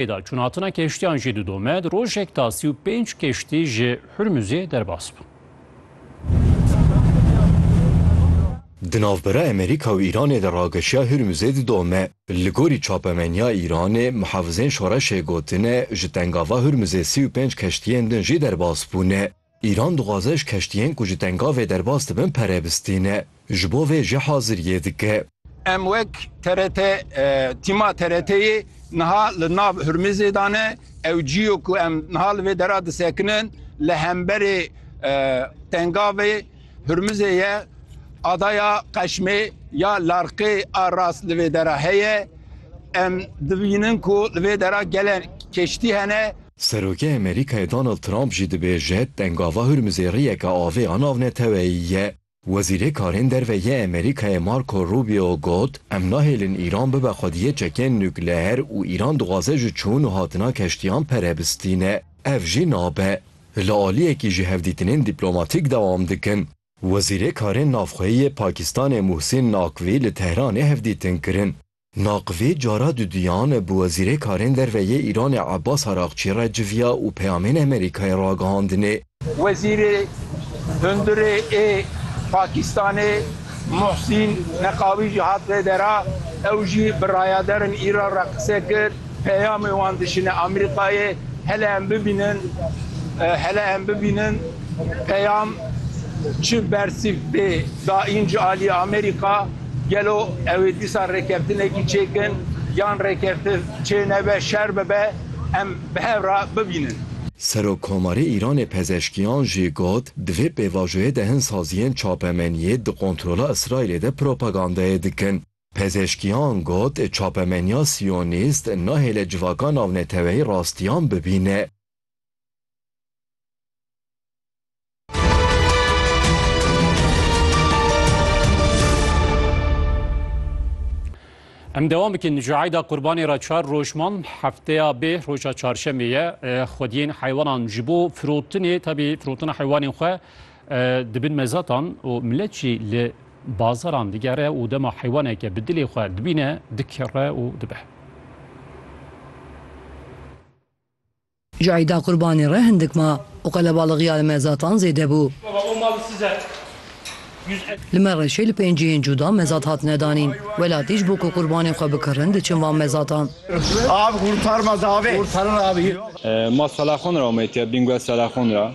Hêda çûnhatina keştiyan jî didome, di rojek da sî û pênc keştî ji Hurmuzê derbas bûn. Di navbera Amerîka û Îranê de rageşiya Hurmuzê didome. Li gorî çapemeniya Îranê, muhafizên şoreşê gotine ji tengava Hurmuzê sî û pênc keştiyên din jî derbas bûne. Îran dixwaze ji keştiyên ku ji Tengavê derbas dibin pere bistîne. Ji bo vê jî haziriyê dike. Em wek TRT, tîma TRT'yê niha li nav Hurmizê de ne. Ew cî yo ku em niha li vê dera disekinin li hemberê Tengavê. Hurmizê ye, adaya Qeşmê ya Larqê a rast li vê dera heye. Em dibînin ku li vê dera gelek keştî hene. Serokê Amerîkayê Donald Trump jî dibêje pengava Hurmizê riyeke avê a navneteweyî ye. Wezîrê Karên Derve yê Amerîkayê Marco Rubio got, Em nahêlin Îran bibe xwediyê çekên nukleer û Îran dixwaze ji çûn û hatina keştiyan pere bistîne. Ev jî nabe. li aliyekî ji hevdîtinên dîplomatîk dewam dikin. Wezîrê Karên Navxweyî yê Pakistanê Muhsîn Nakvî li Tehranê hevdîtin kirin. Nakvî cara duduyan bi Wezîrê Karên Derve yê Îranê Abbas Araqçî re civiya û peyamên Amerîkayê ragihandinê. Wezîrê Hundirê ê Pakistanê Muhsîn Neqavî jî hat vê dera, ew jî bi rayaderên Îran re qise kir. Peyamê wan dişîne Amerîkayê, hele em bibînin, hele em bibînin peyam çi bersîv tê daîn ji aliyê Amerîka, gelo ew ê dîsa rêkeftinekî çêkin yan rêkeftin çê nebe, şer bibe em bi hev re bibînin. Serokkomarê Îranê Pezeşkiyan jî got, di vê pêvajoyê de hin saziyên çapemeniyê di kontrola Îsraîlê de propagandayê dikin. Pezeshkiyan got çapemeniya siyonîst nahêle civaka navneteweyî rastiyan bibîne. Em devam bikin ji eyda qurbanê re çar roj man hefteya bê roja çarşemê ye xwediyên heywanan ji bo firotinê tebî firotina heywanên xwe Di bin mezatan û milet jî li bazaran digere û dema heywaneke bi dilê xwe dibîne dikere û dibe. Ji Eîda Qurbanê re hindik ma û qelebalixîya li mezatan zêde bû. Li Mereşê li pênc cihên cuda mezat hatine danîn. Welatî ji bo ku qurbanên xwe bikirin diçin van mezatan. Masala xwe nira omeyî tê bingwe sala xwe nira.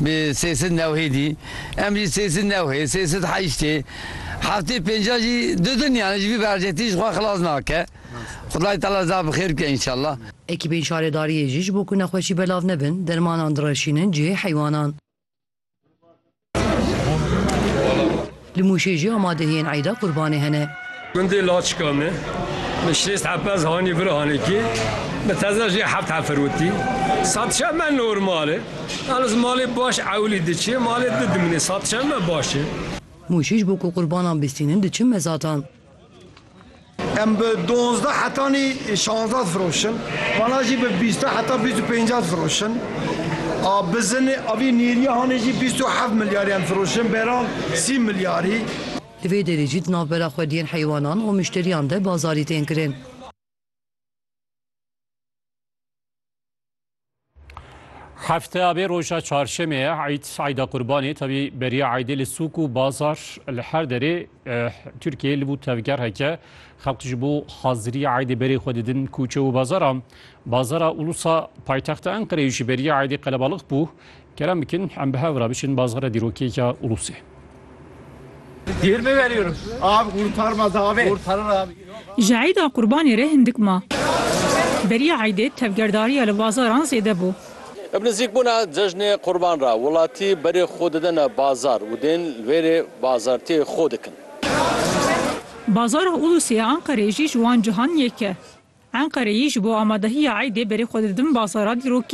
bi sê sed newhêdî, em jî sê sed newhê, sê sed heştê, heftê pêncan jî didin yani ji vî bercetî ji xwe xilas nake. Xwedayê Teala za bi xêr bike înşallah. Ekîbên şaredariyê jî ji bo ku nexweşî belav nebin dermanan direşînin cihê heywanan. Li Mûşê jî amadehiyên Eîda Qurbanê hene. Gundê Laçika me bi şêst hepez hanî vir hanekê, bi teze jî heft hefirwitî. Satişa me normal e. Hal ez malê baş ewilî diçê, malê di dimîne. Satişa me baş e. Mûşê ji bo ku qurbanan bîstînin diçin mezatan. Em bi dozdeh hetanî şazdeh difiroşin. Vana jî bi bîste heta bîst û pênceh difiroşin. A bizinê a vî nêrîya hanê jî bîst û heft milyarî em difiroşin, bêran sî milyarî. Di vê derê jî di navbera xwediyên heywanan û muşterîyan de bazarî tên kirin. Hefte abê roja çarşemê ye eyd eyda qurbanê tevî beriya eydê li sûk û bazar li her derê Tirkiyê li bû tevger heke xelq ji bo hazirî eydê berê xwe didin kûçe û bazaran. Bazara Ulusa paytexta Enqereyê ji beriya eydê qelebalix bû Kerem bikin em bi hev re biçin bazgera dîrokêya Ulusê. Yirmi veriyorum. Abi kurtarmaz abi. Kurtarır abi. Ji eyda qurbanê re hindik ma. Beriya eydê tevgerdariya li bazaran zêde bû. Bi nizîkbûna cejnê qurban re welatî berê xwe didine bazar û dên li wêrê bazartiyê xwe dikin. Bazara Ulusê ya Enqereyê jî ji wan cihan yek e. Enqereyî ji bo amadehiya eydê berê xwe didin bazara dîrokî.